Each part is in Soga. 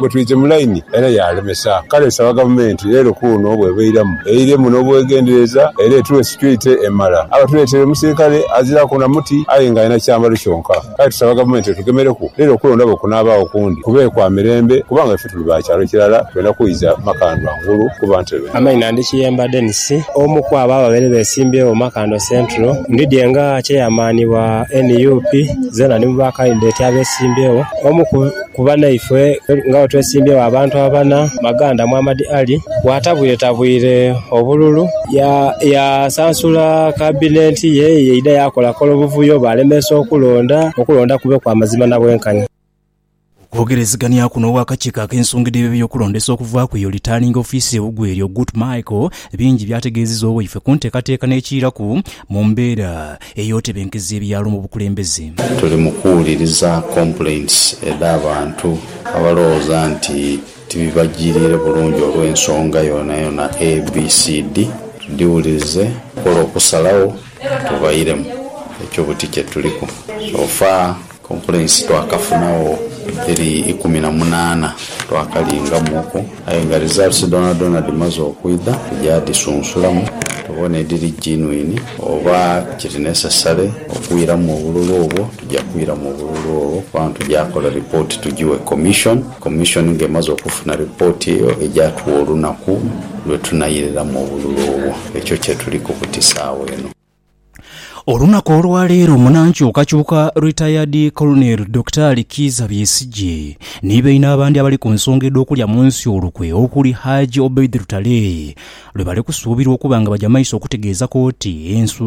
Bwetwidhye mu laini era yaalemesa, kale nsaba Gavumenti leero kuuno bw'ebairamu eiremu n'obwegendereza era etughe securite emala. Abatuleetere omusirikale aziraku na muti aye nga alina kyambalo kyonka. Kale tusaba Gavumenti etugemereku leero kulonda bwe kunaabaagho kundi kube kwa mirembe kubanga ife tuli ba kyalo kirala twenda kwidha Makandwa ngulu kuba ntebe. Amaina, Ndi Kiyemba Denis, omu ku abo ababaire besimbyewo Makandwa Central. Ndidhie nga kyeyamaanibwa nup, zeena ndi mu ba kandideti abesimbyewo. Omu ku banaifwe nga bwetwesimbyewo abantu abana, Maganda Muhammad Ali, bwatabwiretabwire obululu, yasansula kabinenti ye eyaidha yakolakola obuvuyo bwalemeesa okulonda, okulonda kube kwa mazima na bwenkanya. Okwogerezegania kuno ow'akakiiko ak'ensonga edh'ebyo eby'okulondesa okuva ku eyo Returning Officer ewugu eryo, Gut Michael, bingi by'ategeezezza owaife ku nteekateeka n'ekiiraku mu mbeera ey'otebenkeza ebyalo mu bukulembeze. Tuli mu kuwuliriza complaints edh'abantu abalowooza nti tibibajiriire bulungi olw'ensonga yonayona ABCD. Tudhiwulirize tukole okusalawo tuvairemu ekyo buti kyetuliku. Ofa? Complaints twakafunagho dhiri ikumi na munaana twakalingamuuku aye nga results dhoonadhoona dhimaze okwidha tuja dhisunsulamu tubone edhiri genuine oba kiri necessary okwiramu obululu obwo tuja kwiramu obululu obwo kubanga tuja kola report tugighe Commission, Commission nga emaze okufuna report eyo eja tugha olunaku lwetunairiramu obululu obwo. Ekyo kyetuliku ku ti sawa eno. Olunaku olwaleero munankyukakyuka Retired Colonel Dokitaali Kiiza Besigye ni baine abandi abali ku nsonga edh'okulya mu nsi olukwe okuli Hajji Obeid Lutale lwe bali kusuubirwa okuba nga baja maiso okutegeeza kooti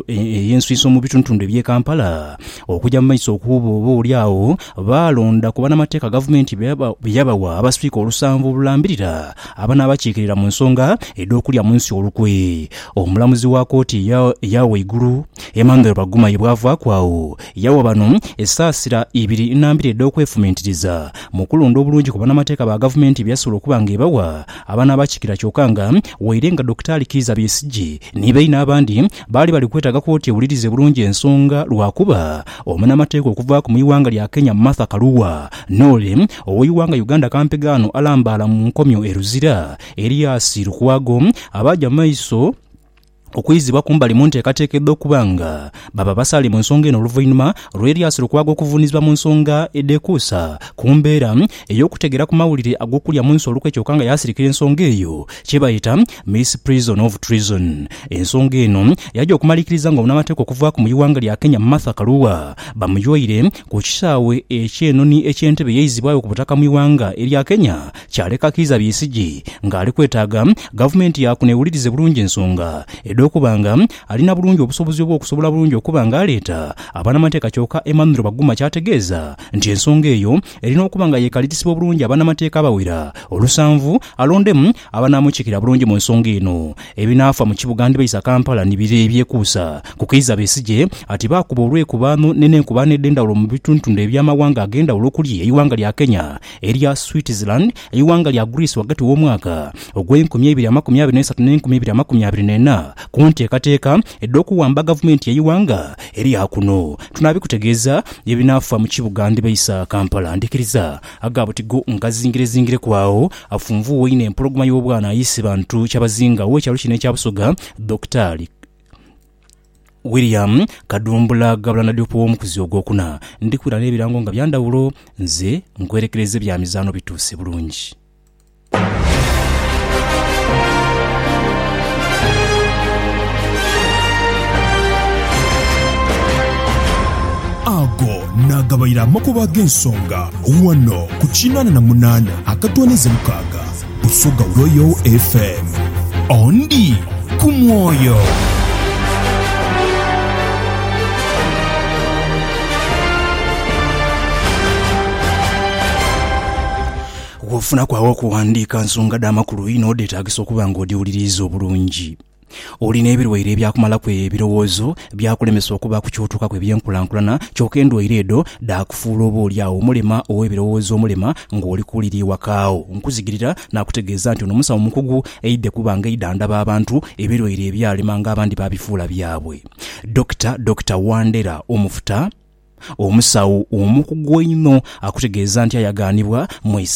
eyensuinso mu bitundutundu eby'e Kampala okuja mu maiso okuwuba oba oli agho baalonda ku banamateeka gavumenti be yabawa abaswiika olusanvu olulambirira abanaabakiikirira mu nsonga edh'okulya mu nsi olukwe. Omulamuzi wa kooti eya eya waigulu, Emmanuel Bagumayi bw'avaaku agho, yawa bano esaasira ibiri na mbiri edh'okwefumiitiriza mu kulonda obulungi ku banamateeka ba gavumenti byeyasobola okuba nga ebawa abanaabakikira kyoka nga waire nga Dokitaali Kiiza Besigye ni baine abandi baali bali kwetaaga kooti ewulirize bulungi ensonga lwakuba omunamateeka okuvaaku mu ighanga lya Kenya Martha Karua n'ole ow'eighanga Uganda Kampigaano alambaala mu nkomyo e Luzira Elias Lukwago abaaja mu maiso okwizibwa kumbali mu nteekateeka edh'okuba nga baba abasaale mu nsonga eno oluvainhuma lwa Elias Lukwago okuvunizibwa mu nsonga edhekuusa ku mbeera ey'okutegeera ku mawulire ag'okulya munsi olukwe kyoka nga yaasirikira ensonga eyo kyebayeta Miss Prison of Treason. Ensonga eno yaja okumalikiriza nga omunamateeka okuvaaku mu iwanga lya Kenya Martha Karua bamuyoire ku kisaawe ekyenoni eky'Entebbe yaizibwayo ku butaka mu iwanga erya Kenya kyaleka Kiiza Besigye nga ali kwetaaga Gavumenti yaakuno ewulirize bulungi ensonga edh'okuba nga alina bulungi obusobozi obw'okusobola bulungi okuba nga aleeta abanamateeka kyoka Emmanuel Baguma ky'ategeeza nti ensonga eyo erina okuba nga yeekalirisibwa bulungi abanamateeka abawera olusanvu alondemu abanaamukiikirira bulungi mu nsonga eno. Ebinaafa mu kibuga ndibaisa Kampala ni bire ebyekuusa ku Kiiza Besigye ati baakuba olw'ekubaano n'enenkubaano edh'endhawulo mu bitundutndu eby'amawanga ag'endhawulo okuli eighanga lya Kenya, Erya Switzerland, eighanga lya Greece ghagati w'omwaka ogw'enkumi eibiri amakumi abiri n'eisatu n'enkumi eibiri amakumi abiri n'ena ku nteekateeka edh'okuwamba gavumenti y'eighanga erya kuno. Tunaabikutegeeza ebinaafa mu kibuga ndhiba isa Kampala. Ndhikiriza aga butigo ngazingirezingireku agho afunvuuwa einho empologoma y'obwana aye isibantu kyabazinga ow'ekyalo kino ekya Busoga, Dokitaali. William Kadumbula Gavulana Diop w'omukuzi ogwokuna, ndi kwira n'ebirango nga bya ndhawulo, nze nkwerekereiza ebya mizaano bituuse bulungi. Ago naagabaire amakubo ag'ensonga ghano ku kinaana na munaana akatoonheze mukaaga. Busoga Royal FM. Ondi ku mwoyo. Bw'ofunaku agh'okuwandiika nsonga dha makulu inho, dheetaagisa okuba ng'odhiwuliriiza obulungi. Oli n'ebilwaire ebyakumalaku ebirowoozo, byakulemesa okuba ku ky'otuukaku eby'enkulankulana, kyoka endwaire edho dhaakufuula oba oli agho omulema ow'ebirowoozo omulema ng'oli ku liri ewaka agho. Nkuzigirira naakutegeeza nti ono musawo mukugu aidhe kuba ng'aidha andaba abantu ebilwaire ebyalema ng'abandi baabifuula byabwe. Dokita, Dokita Wandera Omufuta, omusawo omukugu einho akutegeeza nti ayagaanibwa mu isaza.